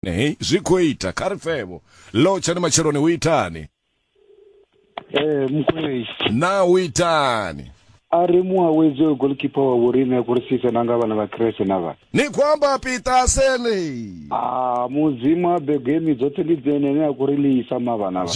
Hey, zwi khou ita kha ri pfevho lotshani matsheloni hu itani ee eh, mukwei na hu itani a ri muawedzi oyo golkipa wa vhorine a kurisise na nga vhana vha krese na vha ni khou amba pitaseni a ah, mudzimu a begemi dzoṱhe ndi dzene ne a kuri liisa mavhana vha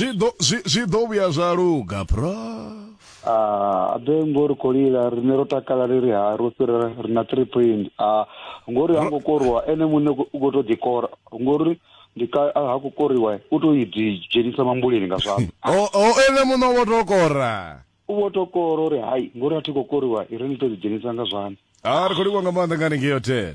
zwi ḓo vhuya zwa luga prof Ah, abe ngori kolila rine ro takala ri ri ha ro fhira ri na three point ah, ngori ha ngo korwa ene muṋe u khou tou ḓikora ngori ndi ka ah, ha khou koriwa u tou i ḓi dzhenisa mambuleni nga zwanḓa o o ene muṋe o vho tou kora u vho tou kora uri hai ngori a thi khou koriwa i ri ni tou ḓi dzhenisa nga zwanḓa a ri khou livhuwa nga maanḓa nga hanengei hotel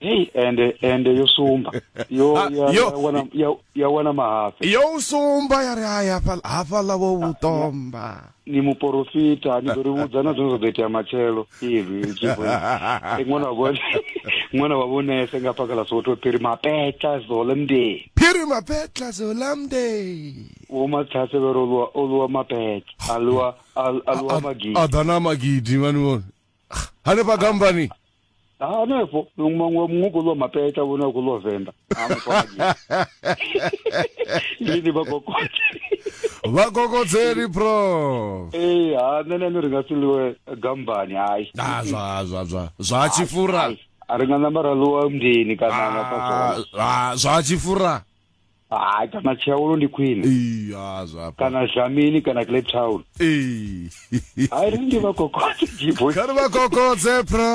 heyi ende ende yo sumba yo Ah, ya- yo- ya wana- ya- ya wana mahafi yo u sumba ya ri hai hafha- hafhaḽa wo vhu ṱomba ni muporofita ni ḓo ri vhudza na zwine zwa ḓo itea matshelo izwi zwi khou- Eh, ṅwana wa vhone ṅwana wa vhonese nga paka ḽa soto phiri mapetla zolemde phiri mapetla zolamde wo mathase vero oluwa oluwa mapetla aluwa al- aluwa magidi a ḓa na magidi mani vhone hanefha gambani Ha, hanefho muṅwe muṅwe khou ḽiwa mapeta vhone a khou ḽiwa venḓa Ha, mufhadzi. lini vhakokote vhakokodzeli prof ee ha nṋe na ene ri nga si ḽiwe gambani hai Ah, zwa zwa zwa zwa tshifura Hai, a ri nga namba ra ḽiwa mndeni kana nga Ah, fhasoni ah, zwa tshifura hai kana tsheolo ndi khwine ee ha zwafha kana zhamini kana cape town ee hai ri ndi vha kokotse jibo kha ri vha kokodze pra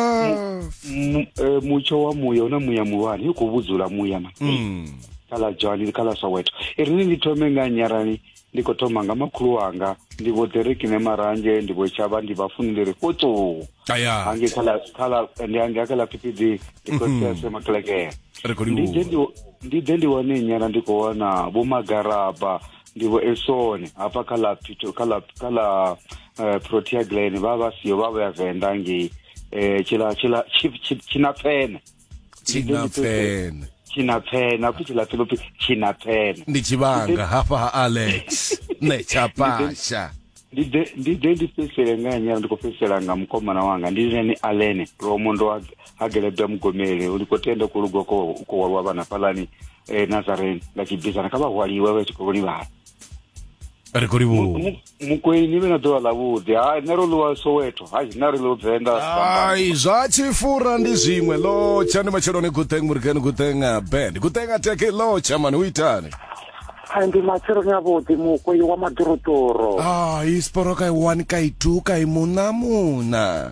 M- eh, mutsho wa muya una muya muhulwane i khou vhudzula muya ma mm khala dzhani khala soweto i rini ndi thome nga nyarani Ndi khou thoma nga makhulu wanga ndi vho Derek ne marange ndi vho Chaba ndi vha funi ndi ri kotso. Aya. Hangi khala khala ndi hangi khala phiphiḓi ndi khou mhm. tsese makelekele. Ri khou ndi ndi ndi ḓe ndi wane nyana ndi khou wana vho magaraba ndi vho Esone hafha kha la Pito kha la kha la eh, Protea Glen vha vha siyo vha vha ya Venda ngei eh tshila tshila tshina pfene. chinapfene chinapfene akuti chilapfeno pe chinapfene ndi chivhanga hafha ha alex ne chapasha ndi ḓe ndi ḓe ndi fhedzisele nga nyala ndi khou fhedzisela nga mukomana wanga ndi lini alene lomo ndo ha- hagelebda mugomele ndi khou tenda ku lugwa ko ko walwa vhana fhalani eh, nazareni nga tshibizana kha vha hwaliwe vha tshi khou livhala ri khou livhuwa mukwei ni vhe na ḓuvha ḽavhuḓi ha nṋe ro ḽiwa soweto ha nṋe ri ḽiwa venḓa ai zwa tshifura ndi zwiṅwe lotsha ndi matsheloni guteng murikeni guteng uh, band guteng ateke lotsha mani u itani ai ndi matsheloni avhuḓi mukwei wa maḓoroḓoro ai sporoka i one ka i two ka i muṋa muṋa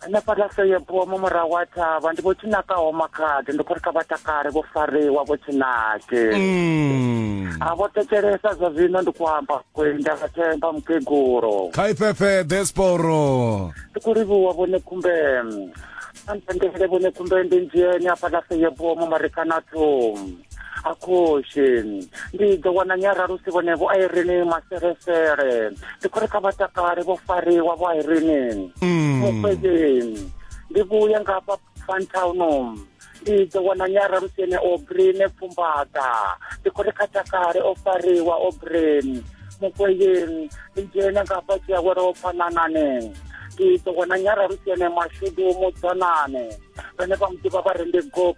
hanefha ḽa seyebua mu murahu wa thavha ndi vho tshinakaho makhadi ndi khou ri kha vha takale vho fariwa vho tshinake mm. a vho tekelesa zwa zwino ndi khou amba kwenda vha themba mukegulo kha ifefe desporo ndi khou livhuwa vhone khumbelo andendele vhone khumbelo ndi ndzheni afha ḽa seyebua mu marekana thum akhoxeni ndi ḓo wana nyaralusi vhonevo a irini maselesele ndi khou ri kha vhatakale vho fariwa vho a irinini mm. mufhedzeni ndi vhuya nga hafha fantown ndi ḓo wana nyaralusi ene obrine pfumbaḓa ndi khou ri kha takale o fariwa obrine mufhedzeni ndi dzhena nga hafha tshiawelo o phanananeni ndi ḓo wana nyaralusi ene mashudu mudzanane vhane vha muḓivha vha ri ndi gob